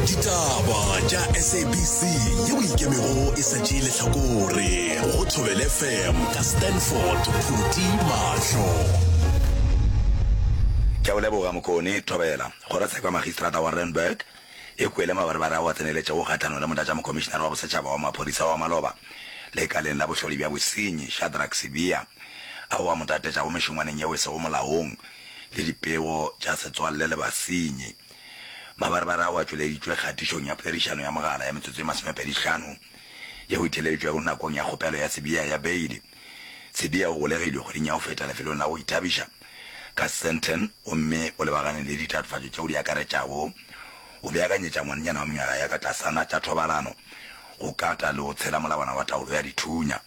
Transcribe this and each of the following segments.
ditaba tša sabc yeo ikemego e sa tšee lehlakore go thobel fm ka stanford phuti mahlo ke o leboga mokone thobela kgorotsheko ya magistrata wa randburg e kwele mabarebare ao a tseneletšego kgahlanong le motlatšamokomišenare wa bosetšhaba wa maphodisa wa maloba lekaleng la bohlodi bja bosenyi shadrack sibiya ao a mo tatetšago mešongwaneng yeo e sego molaong le dipego tša setswalle le basenyi. Mabarebare ao a tšweleditšwe kgatišong ya poledišano ya mogala ya metsotso e masomepedihlano yeo e theeleditšwego nakong ya kgopelo ya Sibiya ya beili. Sibiya o golegilwe kgweding ya go feta lefelong la go ithabiša ka Sandton gomme o lebagane le ditatofatšo tšeo di akaretšago go beakanyetša ngwanenyana wa mengwaga ya ka tlasana tša thobalano, go kata le go tshela molawana wa taolo ya dithunya.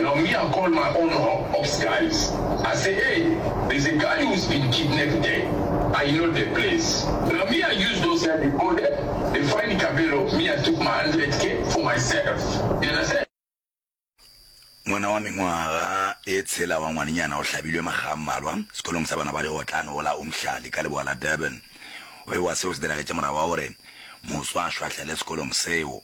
Now me I call my own ops guys I say hey there's a guy who's been kidnapped there I know the place now me I use those guys they go there they find Kabelo me I took my hundred k for myself you understand. Ngwana wa mengwaga e tshela wa ngwanenyana o hlabilwe makga a mmalwa sekolong sa bana ba dikgotlana go la Umhlali ka leboa la Durban. O ewa seo se diragetše morago ga gore moso a šwahlele sekolong seo.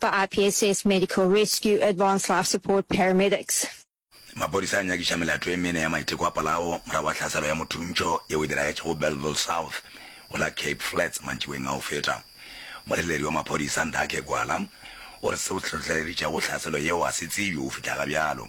ba RPSS Medical Rescue Advanced Life Support Paramedics. Maphodisa a nyakiša melato e mene ya maiteko a polao morago ga tlhaselo ya mothuntšho yeo e diragetšego Bellville South go la Cape Flats mantšiboeng a go feta. Moreteledi wa maphodisa Ndhake Gwala o re seo se hlohleleditšego tlhaselo yeo ga se tsebje go fihla ga bjalo.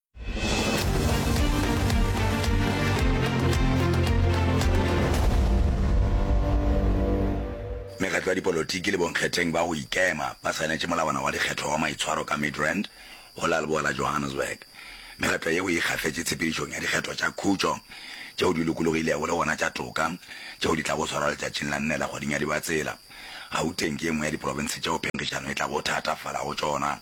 mekgatlo ya dipolotiki le bonkgetheng ba go ikema ba saenetše molawana wa dikgetho wa maitshwaro ka midrand go la leboa la johannesburg mekgatlo yeo e ikgafetše tshepedišong ya dikgetho tša khutšo tšeo di lokologilego le gona tša toka tšeo di tlago swarwa letšatšing la nne la kgweding ya dibatsela gauteng ke ye nngwe ya diprofense tšeo phenkgišano e tlago thatafala go tšona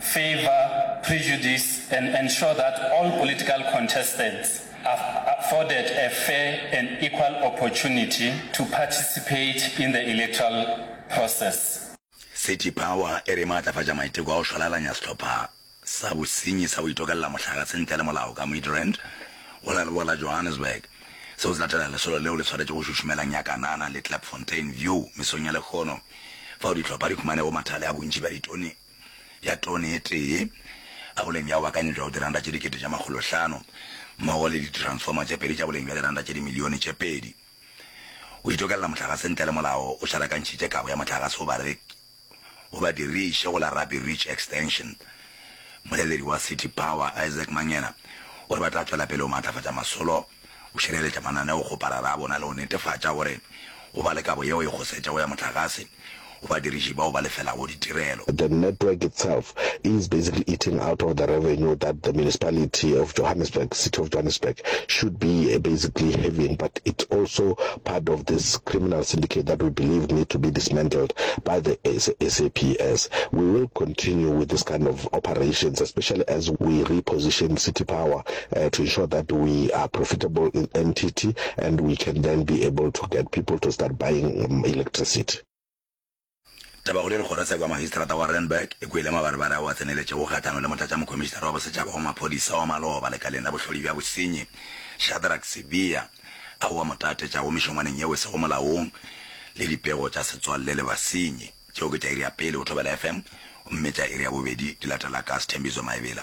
favour prejudice and ensure that all political contestants are afforded a fair and equal opportunity to participate in the electoral process. City Power e re e maatlafatša maiteko a go šwalalanya sehlopha sa bosenyi sa go itokella mohlagase ntle le molao ka Midrand go leroa la Johannesburg. Seo se latela lesolo leo le swaretšwe go šušumela Nyakanana le Klipfontein View mesong ya lekgono fao dihlopha di humanego mathale a bontši bja ditone ya tone e tee ka boleng bja go bakanya bja go diranta tše dikete tša makgolo hlano mmogo le ditransformer tše pedi tša boleng bja diranta tše dimilione tše pedi go itokelela mohlagase ntle le molao o šarakantšhitše kabo ya mohlagase go bareki go badiriši go la Rabbi Ridge Extension. Moleledi wa City Power, Isaac Mangena, o re ba tla tšwela pele go maatlafatša masolo O šireletša mananeokgoparara a bona le go netefatša gore go ba le kabo yeo e kgosetšago ya mohlagase go badiriši bao ba lefelago ditirelo. The network itself is basically eating out of the revenue that the municipality of Johannesburg, City of Johannesburg, should be basically having but it also part of this criminal syndicate that we believe need to be dismantled by the SAPS. We will continue with this kind of operations especially as we reposition City Power to ensure that we are profitable in NTT and we can then be able to get people to start buying electricity. Taba go le lekgorotsheko ya Magistrata wa Randburg e kwele mabarebare ao a tseneletšego kgahlano le Motlatšamokomišinara wa Bosetšhaba wa Maphodisa wa Maloba lekaleng la bohlodi bja bosenyi Shadrack Sibiya ao a mo tatetšago mešongwaneng yeo e sego molaong le dipego tša setswalle le basenyi. Tšeo ke tša iri ya pele go Thobela FM gomme tša iri ya bobedi di latela ka Sthembiso Maebela.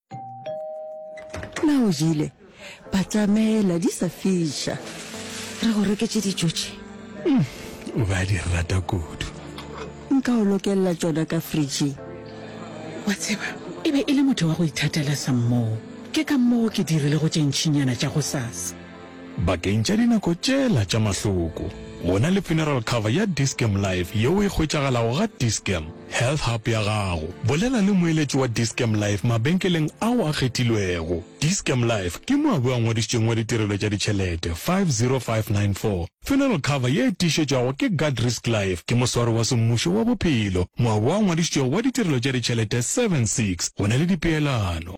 Na o jele? Batamela di sa fiša. Re go reketše dijo tše. Mm, o ba di rata kudu. Nka o lokella tšona ka fridging. Wa tseba, e be e le motho wa go ithatela sa mmoo. Ke ka moo ke dirilego tše ntšinyana tša gosasa. Bakeng tša dinako tšela tša mahloko, go na le funeral cover ya Dis-Chem Life yeo e hwetšagalago ga Dis-Chem Health Hub ya gago. Bolela le moeletši wa Dis-Chem Life mabenkeleng ao a kgethilwego. Dis-Chem Life ke moabi a ngwadišitšweng wa ditirelo tša ditšhelete 50594. Funeral cover ye e tiišetšwago ke Guard Risk Life ke moswari wa semmušo wa bophelo, moabi a ngwadišitšwego wa ditirelo tša ditšhelete 76. Go na le dipeelano.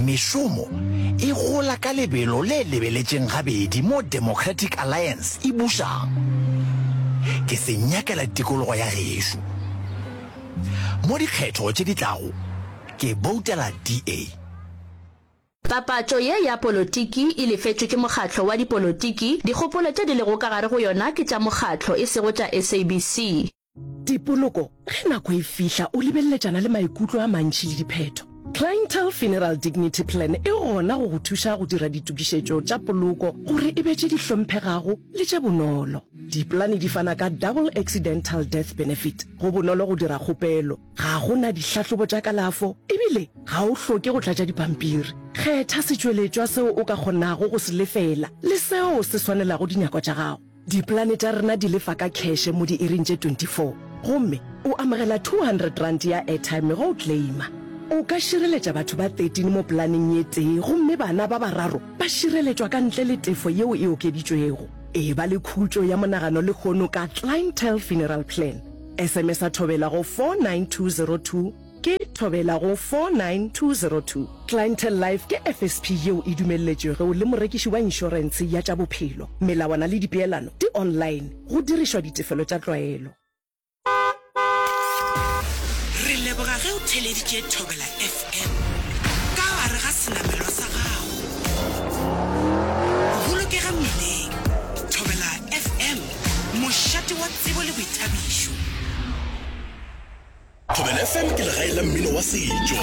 Mešomo e gola ka lebelo le lebeletšeng gabedi mo Democratic Alliance e bušang. Ke se nyakela tikologo ya gešo. Mo dikgetho tše di tlago ke boutela DA. Papatšo ye ya polotiki e lefetšwe ke mokgatlo wa dipolotiki, dikgopolo tše di lego ka gare go yona ke tša mokgatlo e sego tša SABC. Dipoloko, Ge nako e fihla, o lebeleletšana le maikutlo a mantši le diphetho. Clientele Funeral Dignity Plan e gona go go thuša go dira ditokišetšo tša poloko gore e be tše di hlomphegago le tše bonolo. Dipolane di fana ka Double Accidental Death Benefit. Go bonolo go dira kgopelo. Ga go na dihlahlobo tša kalafo ebile ga o hloke go tlatša dipampiri. Kgetha setšweletšwa seo o ka kgonago go se lefela le seo se swanelago dinyako tša gago. Dipolane tša rena di lefa ka kheshe mo diiring tše 24 gomme o amogela R200 ya airtime ge o claima. O ka šireletša batho ba 13 mo polaneng ye tee gomme bana ba bararo ba šireletšwa ka ntle le tefo yeo e okeditšwego. Eba le khutšo ya monagano lehono ka Clientele Funeral Plan. SMS-a thobela go 49202. Ke Thobela go 49202. Clientele Life ke FSP yeo e dumelletšwego le morekiši wa inšorense ya tša bophelo. Melawana le dipeelano di online, go dirišwa ditefelo tša tlwaelo. Re leboga ge o theleditše Thobela FM ka gare ga senamelwa sa gago. Bolokega mmileng! Thobela FM Mošate wa tsebo le boithabišo. Thobela FM ke legae la mmino wa setšo.